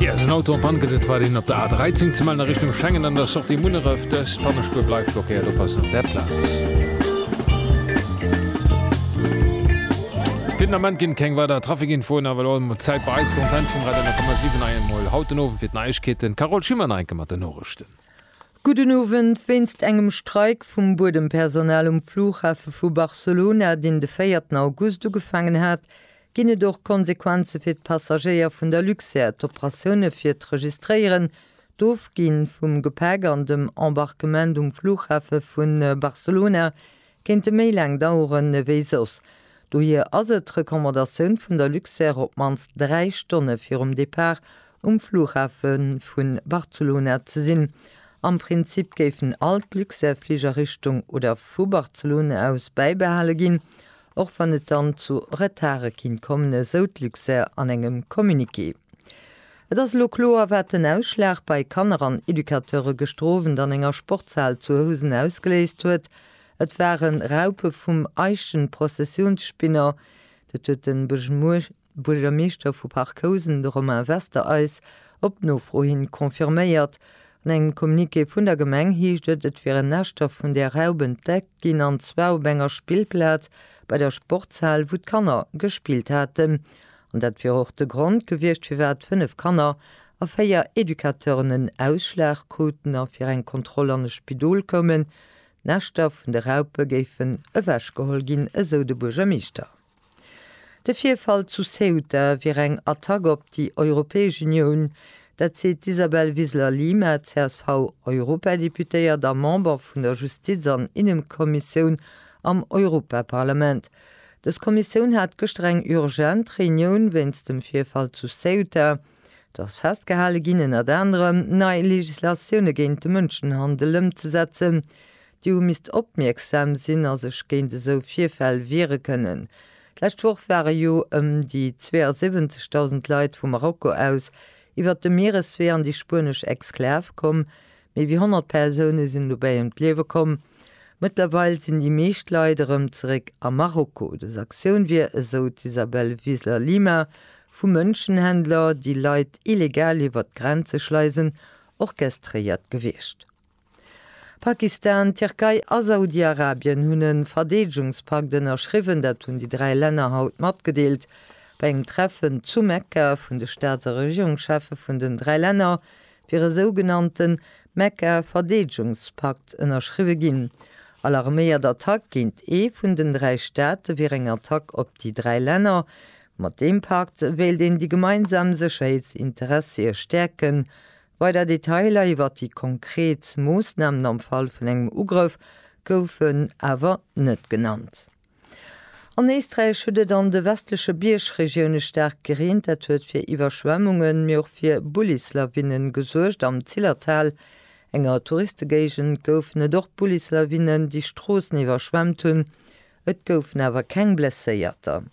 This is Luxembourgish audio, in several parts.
Ier en Auto an d'Pann gëtt, et reit een op der A 13 ze mellen a Richtung Schengen an der Sortie Munneref. Dës Pannespuer bleift blockéiert, oppassen op där Plaz. Fir den Ament ginn keng weider Trafikinfoen, awer elo emol d'Zäit bei eis, d'Antenne vum Radio 10,7 hei emol haut den Owend fir d'Neiegkeeten. Carole Schimmer, Neieke mat den Norechten. Gudden Owend, Wéinst engem Streik vum Buedempersonal um Flughafe vu Barcelona, deen de véierten August ugefaangen hat, Ginn et och Konsequenze fir d'Passagéier vun der Luxair? D'Operatioune fir d'Registréieren, d'Ofgi vum Gepäck an dem Embarquement um Flughafe vu Barcelona kéinte méi laang dauere wéi soss. Dohier ass et d'Recommandatioun vun der Luxair op d'mannst 3 Stonne virum Depart um Flughafe vu Barcelona ze sinn. Am Prinzip géifen all d'Luxair-Fliger Richtung oder vu Barcelona aus bäibehale ginn, och wann et dann zu Retardë kinnt kommen, esou d'Luxair an engem Communiqué. Et ass elo kloer, wat den Ausschlag bei Kanner an Educateure gëschter Owend an enger Sportshal zu Housen ausgeléist huet, Et ware Raupe vum Eichenprozessionsspinner, dat huet de Buergermeeschter, Buergermeeschter vu Parc Housen, de Romain Wester eis op Nofro hin confirméiert. An engem Communiqué vun der Gemeng heescht et, et wieren Näschter vun där Raup entdeckt ginn, an zwar op enger Spillplaz bei der Sportshal, wou d'Kanner gespillt haten. An dat wier och de Grond gewiescht, firwat 5 Kanner a 4 Educateuren en Ausschlag kruten a fir eng Kontroll an e Spidol koumen. D'Näschter vun de Raupe géifen ewechgeholl ginn, esou de Buergermeeschter. De Virfall zu Ceuta wier eng Attack op déi Europäesch Unioun. Dat seet d'Isabel Wiseler-Lima, CSV-Europadeputéiert a Member vun der Justiz an Innekommissioun am Europaparlament. Dës Kommissioun hat gëschter eng urgent Reunioun wéinst dem Virfall zu Ceuta. Do ass festgehale ginn, ënnert anerem nei Legislatioune géint de Mënschenhandel ëmzesetzen. Déi hu misst opmierksam sinn a sech géint esou Virfäll wiere kënnen. D'lescht Woch ware jo ëm déi 72.000 Leit vu Marokko aus iwwert de Miereswee an déi spuenesch Exklav komm. Méi wéi 100 Persoune sinn dobäi ëm d'Liewe komm. Mëttlerweil sinn déi meescht Leit erëm zeréck a Marokko. Dës Aktioun wier, esou d'Isabel Wiesler Lima, vu Mënschenhändler, déi Leit illegal iwwert d'Grenze schleisen, orchestréiert gewiescht. Pakistan, d'Tierkei a Saudi-Arabien hunn e Verdeedegungspakt ënnerschriwwen. Dat hunn déi dräi Länner haut matgedeelt bei engem Treffen zu Mekka vun de Staats a Regierungscheffe vun den dräi Länner, wier e sougenannte Mekka-Verdeedegungspakt ënnerschriwwe ginn. Alarméiert Attack géint ee vun den dräi Staate wier eng Attack op déi dräi Länner. Mat deem Pakt wéilt een déi gemeinsam Sécherheetsinteressie stäerken, Weider Detailer iwwert déi konkret Moossnamen am Fall vun engem Ugrëff goufen awer net genannt. An Éisträich huet et an de westleche Biergregioune staark gereent. Dat huet fir Iwwerschwemmungen, mee och fir Bullislawine gesuergt. Am Zillertal, enger Touristegéigend, goufen et och Bullislawinen, déi Stroossen iwwerschwemmt hunn. Et goufen awer keng Blesséierter.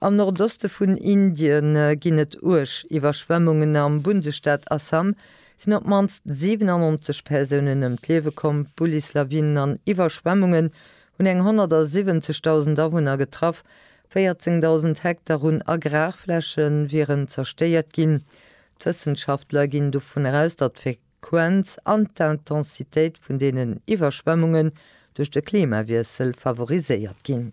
Am Nordoste vun Indien ginn et uerg Iwwerschwemmungen. Am Bundesstaat Assam sinn op d'mannst 97 Persounen ëm d'Liewe komm. D'Bullis Lawinen an Iwwerschwemmungen hunn eng 170.000 Awunner getraff. 14.000 Hektar un Agrarfläche wieren zerstéiert ginn. D'Wëssenschaftler ginn dovun aus, datt fir D'Frequenz an d'Intensitéit vun deenen Iwwerschwemmungen duerch de Klimawiessel favoriséiert ginn.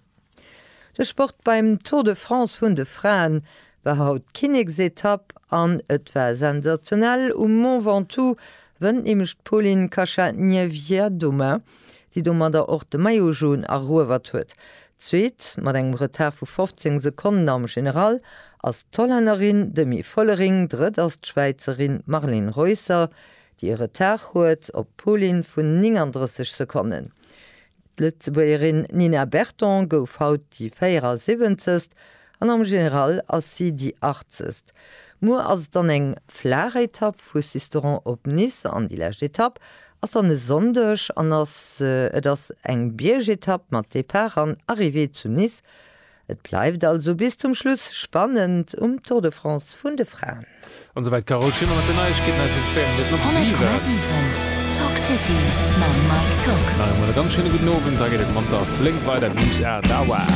De Sport beim Tour de France vun de Fraen war haut d'Kinneksetapp an et war sensationell um Mont Ventoux, wënnt nämlech d'Polin Kacha-Niewiadoma, déi domadder och de Maillot Jaune eruewert huet. Zweet, mat engem Retard vu 15 Sekonnen am General, ass d'Hollännerin Demi Vollering, drëtt ass d'Schwäizerin Marleen Reusser, déi e Retard huet op Poulin vun 39 Sekonnen. D'Lëtzebuergerin Nina Berton gouf haut déi 74. An am General ass si déi Achtzecht. Muer ass et dann eng flaach Etapp vu Sisteron op Nice an déi lescht Etapp ass dann e Sonndeg an ass et ass eng Biergetapp mat Depart an Arrivée zu Nice. Et bleift also bis zum Schluss spannend um Tour de France vun de Fraen. An esouwäit d'Carole Schimmer mat den Neiegkeeten aus dem Féiermënnerten op 7. Talk City mam Mike Tock. Nach eemol e ganz schéine gudden Owend. Hei geet et manter flénk weider bis 8 Auer.